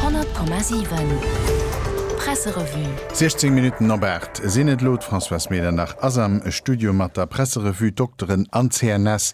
100,7 Presserevue. 16 Minutten op 8 sinn et elo. D'Françoise Medernach ass am Studio mat der Presserevue. D'Dokteren an d'CNS,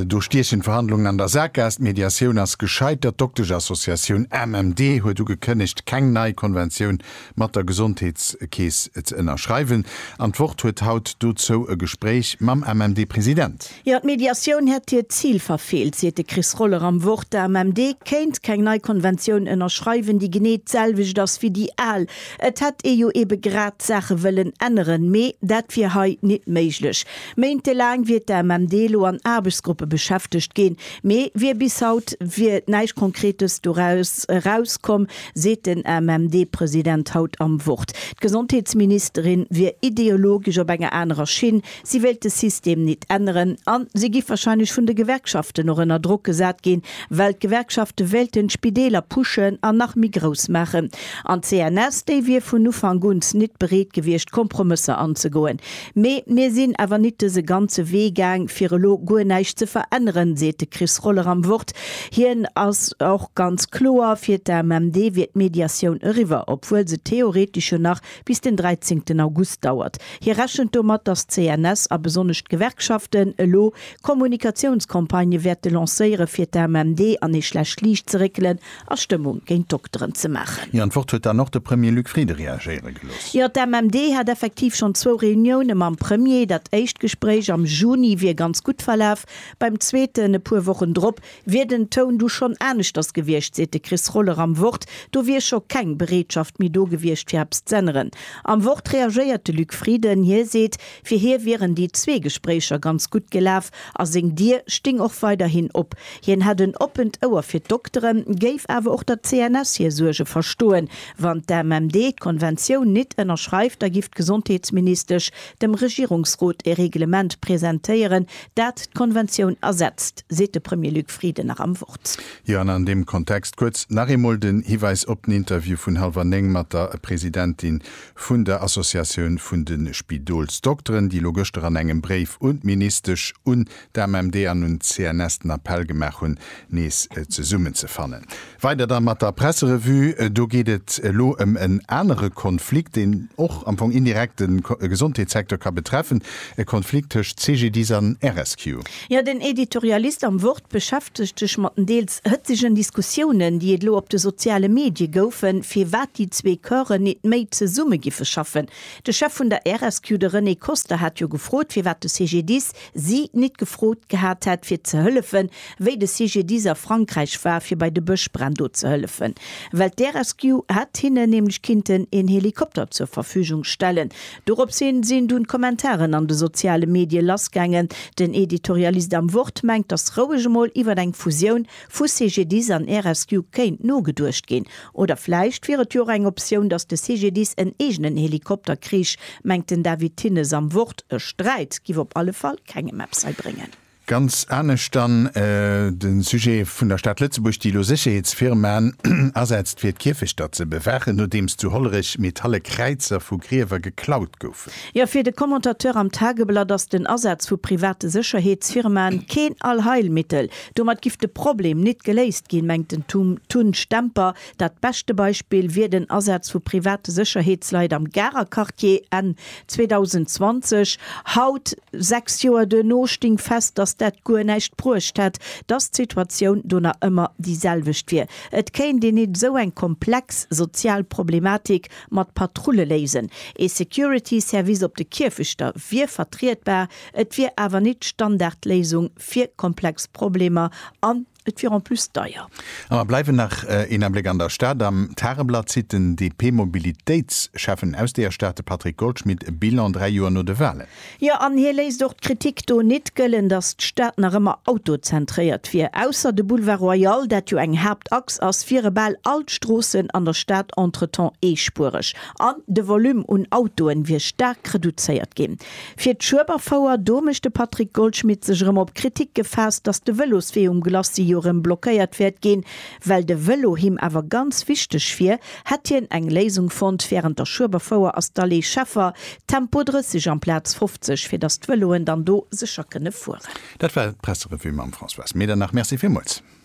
do stiechen d'Verhandlungen an der Saakgaass. D'Mediatioun ass gescheitert. D'Dokteschassociatioun MMD huet ugekënnegt, keng nei Konventioun mat der Gesondheetskeess ze ënnerschreiwen. An d'Wort huet haut dozou e Gespréich mam MMD-President. Jo, d'Mediatioun hätt hiert Zil verfeelt, seet de Chris Roller am Wort. D'AMMD kéint keng nei Konventioun ënnerschreiwen, déi genee d'selwecht ass wéi déi al. Et hätt ee jo eebe grad d'Saache wëllen änneren, mee dat wier hei nit méiglech. Méintelaang wier d'AMMD elo an Aarbechtsgruppe beschäftegt ginn, mee wier bis haut wier näischt Konkretes doraus erauskomm, seet den AMMD-President haut am Wort. D'Gesondheetsministerin wier ideologesch op enger anerer Schinn, Si wéilt de System nit änneren a si giff wahrscheinlech vun de Gewerkschaften och ënner Drock gesat ginn, well d'Gewerkschafte wéilten d'Spideeler pushen an nach méi grouss maachen. An d'CNS, déi wier vun Ufank uns nit bereet gewiescht Kompromësser anzegoen. Mee mir sinn awer nit dëse ganze Wee gaang fir elo guer näischt ze veränneren, seet de Chris Roller am Wort. Hien ass och ganz kloer, fir d'AMMD wier d'Mediatioun eriwwer, obwuel se theoretesch jo nach bis den 13 August dauert. Hie rechent domat, datt d'CNS a besonnesch d'Gewerkschaften elo Kommunikatiounscampagnë wäerte lancéiere fir d'AMMD an ee schlecht Liicht ze réckelen a Stëmmung géint d'Dokteren ze maachen. Ier d'Wort huet dann och de Premier Luc Frieden reagéiere gelooss. Jo, d'AMMD hätt effektiv schonn zwou Reunioune mam Premier. Dat éischt Gespréich am Juni wier ganz gutt verlaf, beim zweeten e puer Wochen drop Wier den Toun du schonn aneschters gewiescht, seet de Chris Roller am Wort, do wier scho keng Bereetschaft méi do gewiescht, fir eppes z'änneren. Am Wort reagéiert de Luc Frieden. Hie seet, fir hie wieren déi zwee Gespréicher ganz gutt gelaf a seng Dier sting och weiderhin op. Hien hätt en oppent Ouer fir d'Dokteren, géif awer och der CNS hir Suerge verstoen. Wann d'AMMD d'Konventioun nit ënnerschreift, da giff d'Gesondheetsministesch dem Regierungsrot e Reglement presentéieren, dat d'Konventioun ersetzt, seet de Premier Luc Frieden nach am Wort. Jo, an an deem Kontext kuerz nach eemol den Hiweis op den Interview vun hallwer néng mat der Presidentin vun der Associatioun vun de Spidolsdokteren, déi elo gëschter an engem Bréif un d'Ministesch, un d'AMMD an un d'CNS den Appell gemaach hunn, nees zesummenzefannen. Weider da mat der Presserevue. Do geet et elo ëm en anere Konflikt, deen och am Fong indirekt de Gesondheetssecteur ka betreffen, e Konflikt tëscht CGDIS an RSQ. Jo, den Editorialist am Wort beschäftegt sech mat den deels hëtzegen Diskussiounen, déi et elo op de soziale Medie goufen, firwat déi zwee Corpsen nit méi zesumme giffe schaffen. De Chef vun der RSQ, de René Koster, hat jo gefrot, firwat de CGDIS si nit gefrot gehat hätt fir ze hëllefen, wéi de CGDIS a Frankräich war fir bei de Bëschbränn do ze hëllefen, well d'Air-Rescue hätt hinnen nämlech kinnten een Helikopter zur Verfügung stellen. Doropshin sinn dunn d'Kommentaren an de soziale Medie lassgaangen. Den Editorialist am Wort mengt, dass roueg emol iwwert eng Fusioun Vu CGDIS an RSQ kéint nogeduecht ginn. Oder vläicht wier et jo och eng Optioun, datt de CGDIS en eegenen Helikopter krich, mengt den David Thinnes am Wort. E Sträit giff op alle Fall kengem eppes hei bréngen. Ganz anescht dann de Sujet vun der Stad Lëtzebuerg, déi elo Sécherheetsfirmaen asetzt, fir d'Kierfechter ze bewaachen, nodeems zu Hollerech metalle Kräizer vu Griewer geklaut goufen. Jo, fir de Commentateur am Tageblatt ass den Asaz vu private Sécherheetsfirmaen keen Allheilmittel. Domat giff de Problem nit geléist ginn, mengt den Tun Stemper. Dat beschte Beispill wier den Asaz vu private Sécherheetsleit am Garer Quartier Enn 2020. Haut, 6 Joer duerno, sting fest, datt dat guer näischt bruecht hätt, datt d'Situatioun do nach ëmmer déi selwecht wier. Et kéint een nit esou eng komplex sozial Problematik mat Patrulle léisen. Ee Security Service op de Kierfechter wier vertrietbar, et wier awer nit d'Standardléisung. fir komplex Problemer an et wier en plus deier. A mer bleiwen nach een Abléck an der Stad. Am Tageblatt zitt den DP-Mobilitéitsschäffen aus deeër Stad, de Patrick Goldschmit, e Bilan dräi Joer no de Walen. Jo, an hie léisst och d'Kritik do nit gëllen, datt d'Stad nach ëmmer autozentréiert wier. Ausser de Boulevard Royal, dat jo eng Haaptachs ass, wiere bal all d'Stroossen an der Stad entretemps eespuereg an de Volume un Autoen wier staark reduzéiert ginn. Fir d'Schueberfouer, do mécht de Patrick Goldschmidt sech erëm op d'Kritik gefaasst, datt de Vëloswee um Glacis jo erëm blockéiert wäert ginn. Well de Vëlo him awer ganz wichteg wier, hätt hien eng Léisung fonnt, Wärend der Schueberfouer ass d'Allée Scheffer Tempo 30 amplaz 50, fir datt d'Vëloen dann do sécher kënne fueren. Dat war d'Presserevue mam Françoise Medernach. Merci villmools.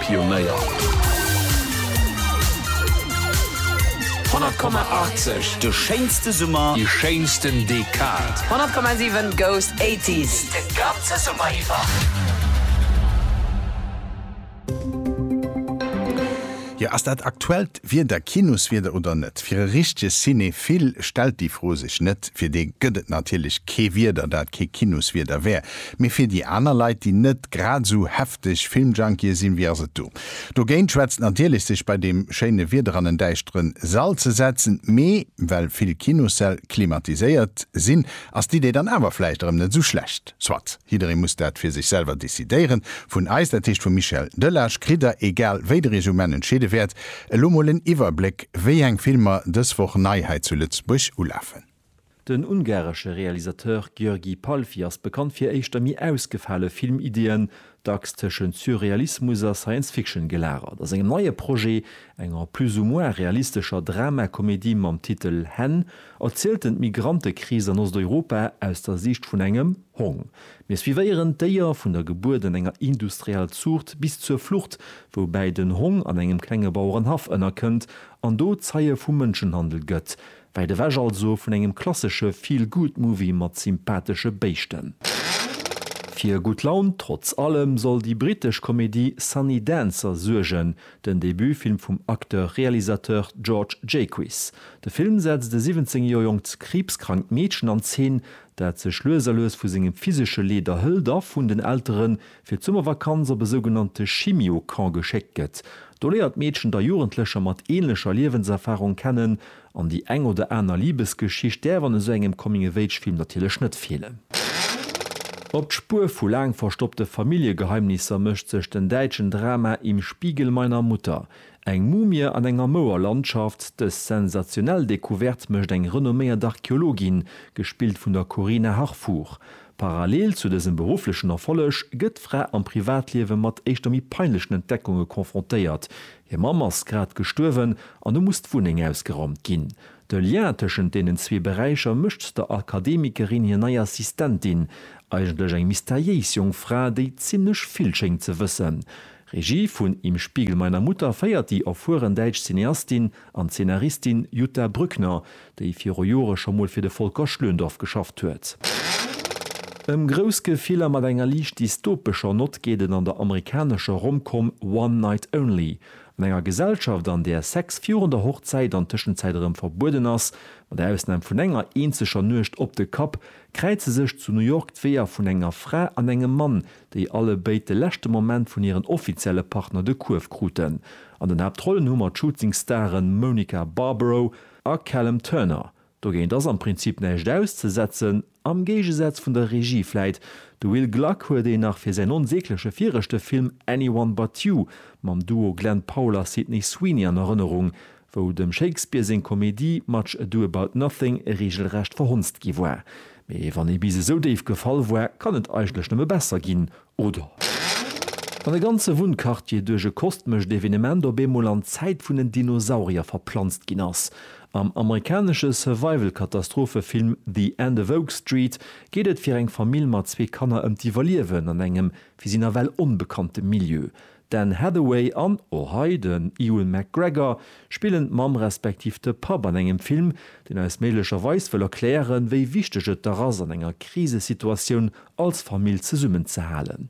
Pionéier. 100,80, De schéinste Summer. Déi schéinsten Dekad. 100,7, Goes 80s, De ganze Summer iwwer. Jo, ass dat aktuellt Wieder Kinoswieder oder net? Fir e richtege Cinephil stellt déi Fro sech net. Fir dee gëtt et natierlech kee Wieder, dat kee Kinoswieder wär. Mee fir déi aner Leit, déi net grad esou. Dech Filmjunkie sinn, wéi ass et do dogéint? Schwätzt natierlech sech bei deem schéine Wieder an en däischteren Sall ze setzen, mee well vill Kinossäll klimatiséiert sinn, ass d'Idee dann awer vläicht erëm net esou schlecht. Soit, jidderee muss dat fir sech selwer decidéieren. Vun eis, dat heescht vum Michel Delage, kritt der, egal wéi der iech um Enn entscheede wäert, elo mol en Iwwerbléck, wéi eng Filmer dës Woch nei hei zu Lëtzebuerg ulafen. Den ungaresche Realisateur György Palffy ass bekannt fir éischter méi ausgefale Filmideeën, dacks tëschent Surrealismus a Science Fiction gelagert. A sengem neie Projet, enger plus ou moins realistescher Dramakomedie mam Titel Hen, erzielt en d'Migrantekris an Osteuropa aus der Siicht vun engem Hong. Mir suivéieren d'Déier vun der Gebuert an enger industrieller Zuucht bis zur Flucht, woubäi den Hong an engem klenge Bauerenhaff ënnerkënnt an do Zeie vum Mënschenhandel gëtt. Wäit ewech also vun engem klassesche Feel-Good-Movie mat sympathesche Béischten. Fir gutt Laun, trotz allem, soll déi brittesch Komedie Sunny Dancer suergen, den Debutfilm vum Acteur-Realisateur George Jaquiss. De Film setzt e 17 Joer jonkt kriibskrankt Meedchen an Zeen, dat sech lues a lues vu sengem physesche Leed erhëlt a vun den Elteren, fir d'Summervakanz op e sougenannte Chimio-Camp geschéckt gëtt. Do léiert d'Meedchen da Jugendlecher mat änlecher Liewenserfarung kennen an déi eng oder aner Libesgeschicht däerf an esou engem Coming-of-Age-Film natierlech net feelen. Op d'Spuer vu laang verstoppte Familljegeheimnisser mécht sech den däitschen Drama Im Spiegel meiner Mutter. Eng Mumie an enger Mouer Landschaft, dës sensationell Decouverte mécht eng renomméiert Archeologin, gespillt vun der Corina Harfouch. Parallel zu dësem berufflechen Erfolleg gëtt d'Fra am Privatliewe mat éischter méi peinlechen Entdeckunge confrontéiert, Hir Mamm ass grad gestuerwen an hu muss d'Wunneng ausgeraumt ginn. De Lien tëschent deenen zwee Beräicher mécht der Akademikerin hir nei Assistentin, eigentlech eng mysteriéis jonk Fra, déi zimmlech vill schéngt ze wëssen. Regie vun Im Spiegel meiner Mutter féiert déi erfueren däitsch Cineastin. An d'Zeenaristin Jutta Brückner, déi viru Jore scho mol fir de Volker Schlöndorff geschafft huet. Ëm grouss Gefiller mat enger liicht dystopescher Nott geet et an der amerikanescher Rom-Com One Night Only. An enger Gesellschaft, an där Sex virun der Hochzäit an Tëschenzäit erëm verbueden ass, mat Ausnam vun enger eenzeger Nuecht op de Kapp, kräize sech zu New York d'Weeër vun enger Fra an engem Mann, déi alle béid de leschte Moment vun hiren offizielle Partner de Kuerf kruten. An den Haaptrollen hu mer d'Shooting Staren Monica Barbaro a Callum Turner. Dogéint ass am Prinzip näischt auszesetzen, am Géigesaz vun der Regie vläit. De Will Gluck huet een nach fir säin onsägleche viregte Film Anyone But You mam Duo Glen Powell a Sydney Sweeney an Erënnerung. wou dem Shakespeare seng Komedie Much Ado About Nothing reegelrecht verhonzt gi war. Mee wann ee bis esou déif gefall war, kann et eigentlech nëmme besser ginn, oder? Wann e ganze Wunnquartier duerch e kostmescht Evenement op eemol an d'Zäit vun den Dinosaurier verplanzt ginn ass. Am amerikanesche Survival-Katastrophefilm The End of Oak Street geet et fir eng Famill mat zwee Kanner ëm d'Iwwerliewen an engem fir si nawell onbekannte Milieu. D'Anne Hathaway an, och hei, den Ewan McGregor spillen d'Mamm respektiv de Papp an engem Film, deen eis méiglecherweis wëll erklären, wéi wichteg et dach ass, an enger Krisesituatioun als Famill zesummenzehalen.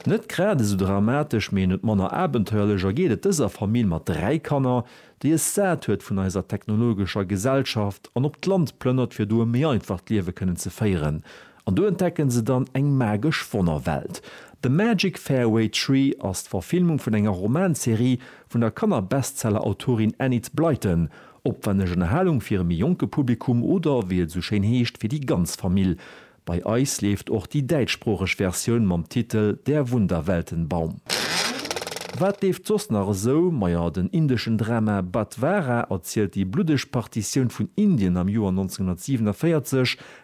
Net grad esou dramatesch, mee net manner abenteuerlech ergeet et dëser Famill mat dräi Kanner, déi es sat huet vun eiser technologescher Gesellschaft an op d'Land plënnert, fir do e méi einfacht Liewe kënnen ze féieren. An do entdecken se dann eng magesch Wonnerwelt. The Magic Fairway Tree ass d'Verfilmung vun enger Romanserie vun der Kanner-Bestseller-Autorin Enid Blyton. Opwenneg Ënnerhalung fir e méi jonke Publikum oder, wéi et esou schéin heescht, fir déi ganz Famill. Bei eis leeft och déi däitschsproocheg Versioun mam Titel Der Wunderweltenbaum. Wat leeft soss nach esou? Majo, den indeschen Drama Badhwara erzielt déi bluddeg Partitioun vun Indien am Joer 1947,